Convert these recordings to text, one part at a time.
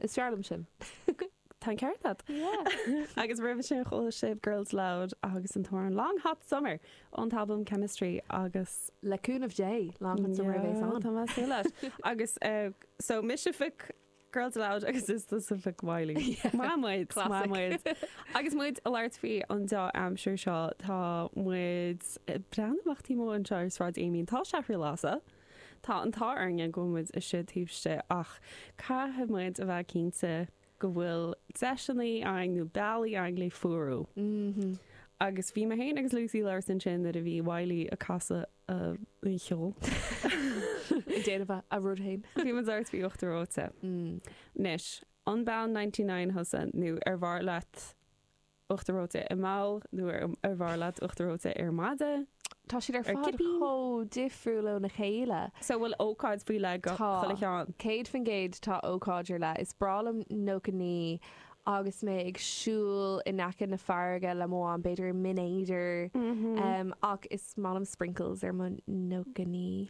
Is fearr liom sin. Tá an ceart agat. Agus roimhe sin chuala sibh Girls Aloud agus an t-amhrán Long Hot Summer ón t-albam Chemistry agus. Le cúnamh Dé, Long Hot Summer a bheas ann. Yeah, tá mé ag súil leis. Agus so mise a phioc, Girls Aloud agus is tusa a phioc Wiley. Maith muid! Classic. Maith muid! Agus muid ag labhairt faoin dea-aimsir seo, tá muid ag breathnú amach taobh amuigh anseo ar Shráid Amiens. Tá sé ar lasadh. Tá an t-ádh orainne go bhfuil muid istigh taobh istigh ach caithfidh muid a bheith cinnte go bhfuil deiseanna againn nó bealaí againn le fuarú. Agus bhí mé féin agus Lucy ag labhairt ansin nuair a bhí Wiley ag casadh a cheoil. Ag déanamh a rud féin. Bhí muid ag labhairt faoi uachtar reoite. Anois, an bean ninety-nine thusa nó arbh fhearr leat uachtar reoite i mbabhla nó arbh fhearr leat uachtar reoite ar mhaide, Tá siad ar fad chomh difriúil óna chéile. So bhfuil ócáid faoi leith do chuile cheann? Tá. Céad faoin gcéad tá ócáid ar leith. Is breá liom nócha naoi agus mé ag siúl in aice na farraige le mo mham, b'fhéidir i mBinn Éadair, ach is maith liom sprinkles ar mo nócha naoi.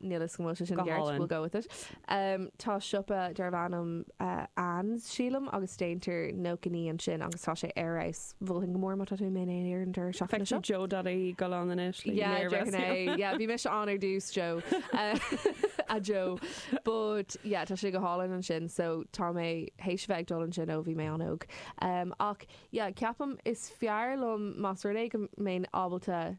Níl 'fhios agam an bhfuil sé sin ceart, we'll go with it. Tá siopa darbh ainm Anne's, sílim, agus déantar nócha naoi ansin agus tá sé ar fheabhas. Mholfainn go mór má tá tú i mBinn Éadair an deireadh seachtaine seo. Feicfidh Joe Dadaí go lán anois le Yeah, léamh déarfainn é. easnaimh. Yeah, bhí mise ann ar dtús, Joe. A Joe. But, yeah, tá sé go hálainn ansin, so tá mé th'éis a bheith ag dul ansin ó bhí mé an-óg. Ach, yeah, ceapaim is fearr liom más rud é go mbeinn ábalta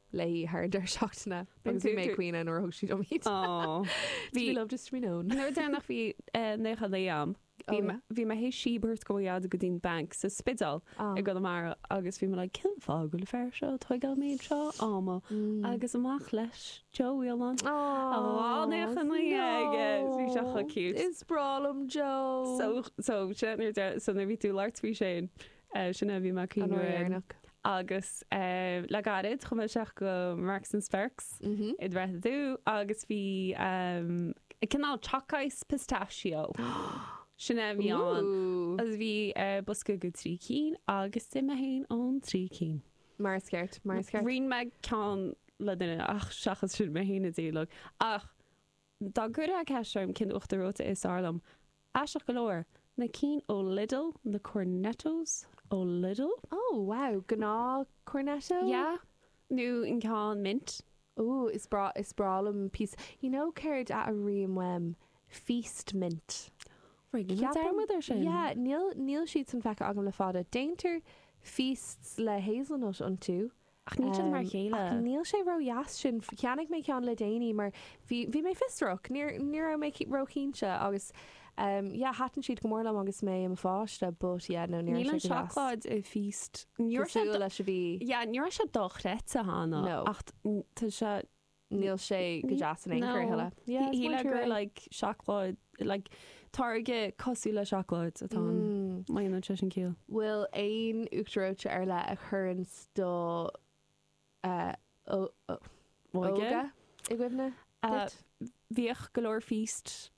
léi thar an deireadh seachtaine agus bhí mé ag caoineadh nuair a thug siad dom iad. Do bhí love just to be known. An uair dheireanach a bhí naocha naoi a'm bhí mé th'éis síob a thabhairt do m'athair go dtí'n banc sa Spidéal i gConamara agus bhí mé like cén fáth go bhfuil an fear seo ag tógáil an méid seo ama agus amach leis Joe Whelan le dhá naocha naoi aige so bhí sé chomh cute. Is breá liom Joe. So so sin nuair bhí tú in Arts Week Shane. Sin é a bhí mé ag caoineadh. Agus le gairid, chuaigh mé isteach go Marks and Sparks i dTrá Lí agus bhí cineál choc ice Pistachio. Sin é a bhí ann. Agus bhí bosca de trí cinn agus d'ith mé féin an trí cinn. Mar is ceart, mar is ceart. Roinn mé ceann le duine, ach seachas sin, mé féin a d'ith uilig. Ach. Dá gcuirfeá ceist orm cén uachtar reoite is fearr liom, aisteach go leor, na cinn ó Lidl, na Cornettos ó Lidl. Ó, wow, gnáth Cornetto? Yeah, nó an ceann mint. Ooh, is breá, is breá liom píosa, you know céard a airím uaim, feast mint. Right, rinne mé dearmad ar sin. Yeah, níl, níl siad san feicthe agam le fada. Déantar feasts le hazelnut iontu, Ach níl siad mar a chéile. Ach níl sé ró dheas sin. Cheannaigh mé ceann le déanaí mar bhí bhí mé fiosrach. Ní ní raibh mé ró chinnte agus ehm yeah thaitin siad go mór liom agus mé i mo pháiste but yeah no ní raibh sé go deas. Níl an seacláid i Feast cosúil le mar a bhí. Yeah ní raibh sé dochreidte Hannah. No. Ach tá sé. níl sé go deas in aon chor a thuilleadh. Yeah, it's more true. like seacláid, like táirge cosúil le seacláid atá ann. Mm. Má dhéanann sé sin ciall. bhfuil aon uachtar reoite ar leith a chuireanns do eh, ó- ó- Óige? óige i gcuimhne Ah, duit? Bhíodh go leor Feast